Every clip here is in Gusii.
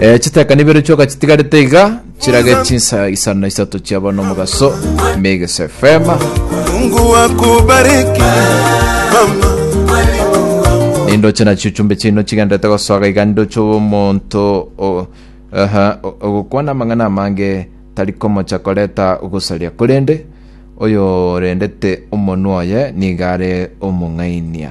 Eh, chitekani ibere chioka chitigarete iga chirage chinsa isano na isato chiaba nomogaso Mix FM Mungu akubariki mama. nindoche nachio chumbe chino chigendete gosoga iga nindoche omonto o- aha, o- ogokwana amang'ana amange tari komocha koreta ogosaria korende oyo orendete omonwa oye niga are omong'ainia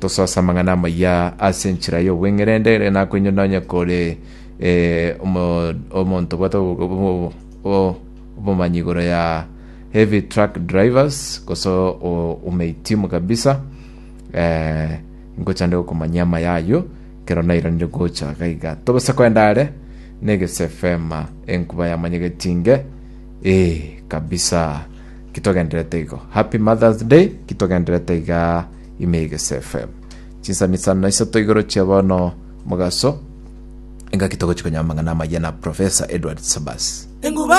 Tosase amang'ana amaya ase enchera y'obweng'erende, ere nakoinyore nonye kore omonto obwate obomanyi igoro ya heavy truck drivers gose omehitimu kabisa ngochande gokomanyia amaya ayio ekero nairanire gocha iga iga. Togose koenda are na egese efema enkuba yamanyegeti inge kabisa. Ki togendererete igo. Happy Mother's Day ki togendererete igaa. ime egesefe chinsani isano na isato igoro chia bono mogaso engaki togochi konyora amang'ana amaya na Professor Edward Sabas.